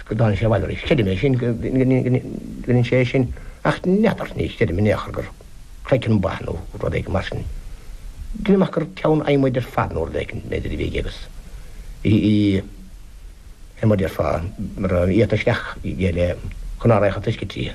Screadann sé abhaile arís. Creidim é sin, go ndéanann sé é sin, ach n'fheadar, ní chreidim in aon chor gur craiceann ba nó rud éigin mar sin. Deinim amach gur ceann adhmaid ar fad nó rud éigin, b'fhéidir, a bhí aige agus bhí adhmad, déarfá, iata isteach aige le chun a fhraoch a taisceadh tríthi.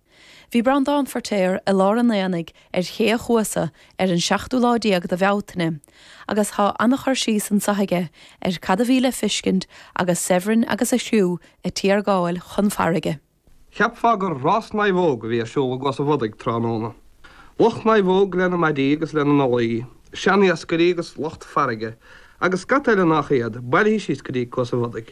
Bhí Breandán Firtéar i lár an aonaigh ar Ché a' Chuasa ar an seachtú lá déag de Bhealtaine agus tá an-chur síos anseo aige ar cad a bhí le feiscint agus Severin agus a chriú a' tiargáil chun farraige. Cheapfá gur rás naomhóg a bhí ar siúl i gCuas a' Bhodaigh tráthnóna. Lucht naomhóg lena maidí agus lena ndolaí, seaniascairí agus lucht farraige, agus scata eile nách iad, bailithe síos go dtí Cuas a' Bhodaigh.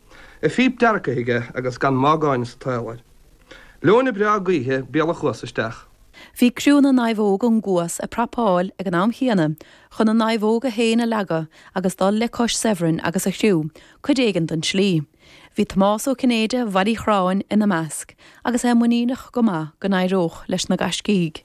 a phíp deargtha aige agus gan má gáinne sa tsaol air. Leoithne breá gaoithe béal a' Chuasa isteach. Bhí criúnna naomhóg ón gCuas ag prapáil ag an am chéanna chun na naomhóga féin a leagadh agus dul le cois Severin agus a chriú cuid éigin den tslí. Bhí Tomás Ó Cinnéide, Bhaile Uí Chorráin, ina measc agus é muiníneach go maith go n-éireodh leis na gaiscígh.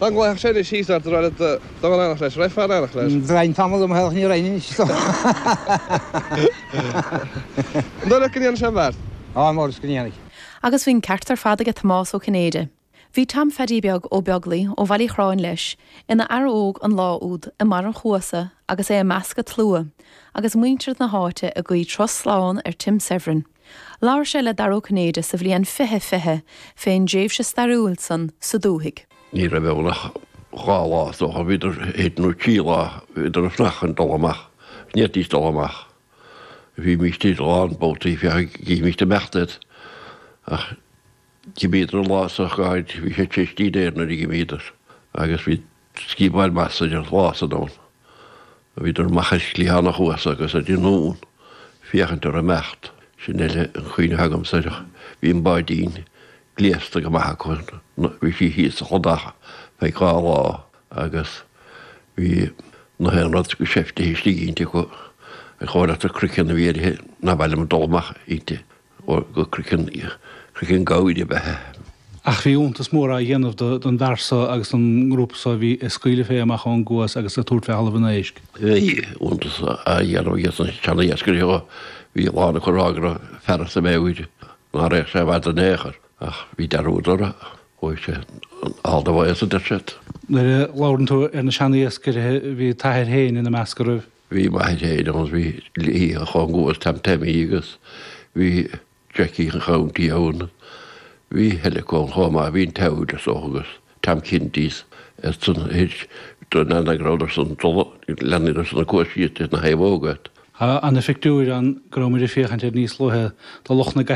Dá nglacfadh sé leis thíos ar dtráth le dul in aithneach leis, rithfeá in aithneach leis. Bhrain tamall dom a theaghlach, ní raibh anois dom. An dóigh leat go ndéanfaidh sé an bheart? Ambaist go ndéanfaidh. Agus bhí an ceart ar fad aige Tomás Ó Cinnéide. Bhí Tom Pheaidí Beag Ó Beaglaoi ó Bhaile Uí Chorráin leis, ina fhear óg an lá úd, i mbarr an chuasa agus é i measc an tslua, agus muintir na háite ag guí turas slán ar Tim Severin. Labhair sé le Dara Ó Cinnéide sa bhliain 2020 fén dtréimhse stairiúil san sa dúthaigh. Ní raibh ann ach dhá lá, is dócha, bhíodar, thíos, nó trí lá, bhíodar ag fanacht chun dul amach, go ndéanfaidís dul amach. Bhímíst a lán babhtaí, féach an gcífimíst ag imeacht iad. Ach d'imíodar an lá so, go háirithe, bhí sé tar éis dinnéir nuair a d'imíodar agus bhí, sciobail Mathsa an lá san ann, bhíodar amach ar chliathán an chuasa agus ar an nDún féachaint air ag imeacht. Sin uile an cuimhne atá agamsa air. Bhí an báidín gléasta go maith acu, bhí sí thíos sa chladach feadh dhá lá agus bhí nach aon rud go seiftithe istigh inti acu, an chomhleasa croiceann a bhí uirthi, nár mhaith liom dul amach inti. ór go craiceann craiceann gabhair a bhí uirthi. Ach bhí iontas mór á dhéanamh don bhfear so agus don ngrúpa so a bhí ag scaoileadh fé amach ón gCuas agus ag tabhairt fé Thalamh an Éisc. Bhí iontas á dhéanamh aiges na seaniascairithe. Bhí a lán acu ag rá go raibh an fear as a mheabhair, ná raghadh sé i bhfad in aon chor. Ach bhí dearúd orthu. Chuaigh sé all the way, a deir siad. Nuair a labhrann tú ar na seaniascairithe, bhí t'athair féin ina measc, an raibh? Bhí m'athair féin ann, bhí dlíthe á chúngú ag Tom Taimín agus bhí Jackie an Chounty ann. Bhí Helico chomh maith, bhí an tEaglais ann agus Tom Kintys ar son an leanna go rabhadar san go léir ann agus ar son na coisíochta sna naomhóga. Tá ana-phictiúir ann go rabhamair ag féachaint air níos luaithe do lucht na.